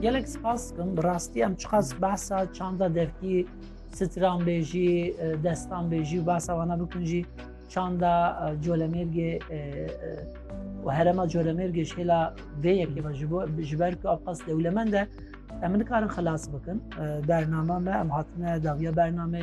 Gelek spas dikim bi rastî em çiqas behsa çanda devkî stranbêjî, destanbêjî û behsa wana bikin jî çanda colemêrgê û herema colemêrgê ji hêla vê yekê ve ji bo ji ber ku ev qas dewlemend e em nikarin xilas bikin bernama me em hatine dawiya bernamê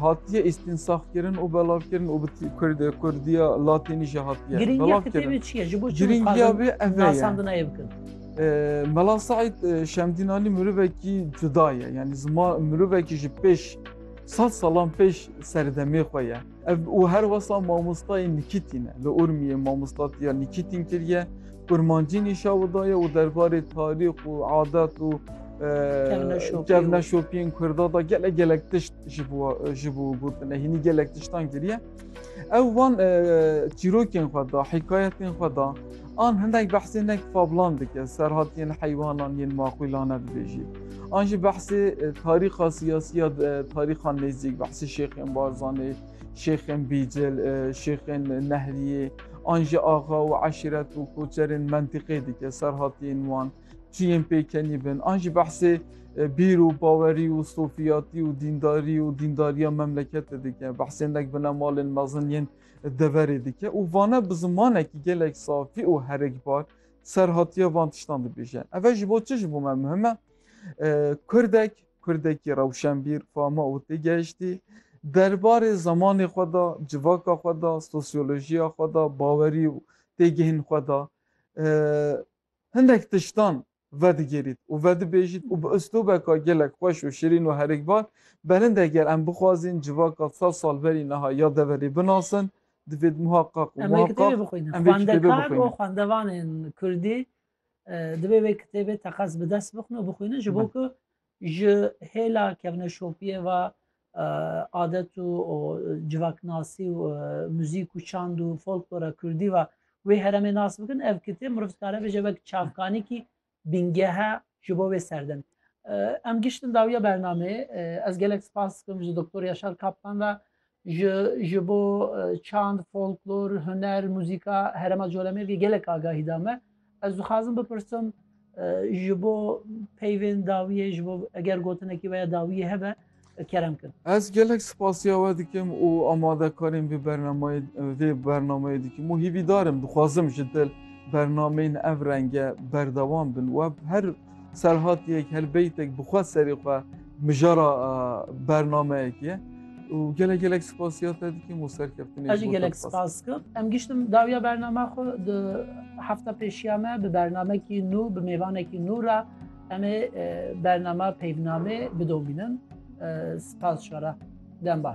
hatiye îstînsafkirin û belavkirin û bi Kurd Kurdiya Latînî jî hatiye. Girîngiya kitêbê çi ye? Ji bo çi nasandina ye bikin? Mela Saîd Şemdînanî mirovekî cuda ye. Yani ziman mirovekî ji pêş sed salan pêş serdemê xwe ye. Ev û her wesa mamostayê Nikîtî ne. Li Urmiyê mamostatiya Nikîtîn kiriye, kurmancî nîşa widaye û derbarê tarîx û adet û kevneşopiyên Kurda da gelek gelek tişt ji bo gotine hînî gelek tiştan kiriye. Ew van çîrokên xwe da, hikayetên xwe da An hinek behsê nek fablan dike, serhat yên heywanan yên maqûlane dibêjî. An jî behsê tarîxa siyasî ya tarîxan nêzîk, behsê Şêxên Barzanî, Şêxên Bîcil, Şêxên Nehriyê, an jî axa û eşîret û koçerên mentîqê dike, serhat yên wan, çiyên pêkenî bin. An jî behsê bîr û bawerî û sofiyatî û dîndarî û dîndariya memleketê dike. Behsê nek binemalên mezin yên deverê dike û vane bi zimanekî gelek safî û herikbar serhatiya van tiştan dibêje. Ev e ji bo çi ji bo me muhim e? Kurdek, Kurdekî rewşenbîr, fama û têgehiştî derbarê zemanê xwe de, civaka xwe de, sosyolojiya xwe de, bawerî û têgihên xwe de hindek tiştan vedigerît û vedibêjît û bi uslûbeka gelek xweş û şirîn û herikbar berind eger em bixwazîn civaka sed sal berî niha ya deverê binasin divêt muheqeq û muheqeq em vê kitêbê bixwînin. Xwendevanên kurdî divê vê kitêbê teqez bi dest bixin û bixwînin ji bo ku Ji hêla kevneşopiyê ve adet û civaknasî û muzîk û çand û folklora kurdî ve wê heremê nas bikin. Ev kitêb mirov dikare bêje wek çavkanekî bîngehe ji bo wê serdem. Em giştin dawiya bernameyê. Ez gelek spas dikim ji Doktor Yaşar Kaplan ve Ji ji bo çand, folklor, huner, muzîka herêma Colemêrgê gelek agahî da me. Ez dixwazim bipirsim ji bo peyvên dawiyê ji bo eger gotinekî veya dawiyê hebe kerem kin. Ez gelek spasiya we dikim û amadekarên vê bernameyê vê bernameyê dikim û hîvîdarim dixwazim ji dil bernameyên ev renge berdewam bin we her Serhatiyek, helbeytek bi xwe serê xwe mijara bernameyekê ye û gelek gelek spasiya te dikim û serkeftinê Ez jî gelek spas dikim. Em giştim dawiya bernama xwe di hefta pêşiya me bi bernamekî nû bi mêvanekî nû re em ê bernama peyvnamê bidomînin spas jara dembar.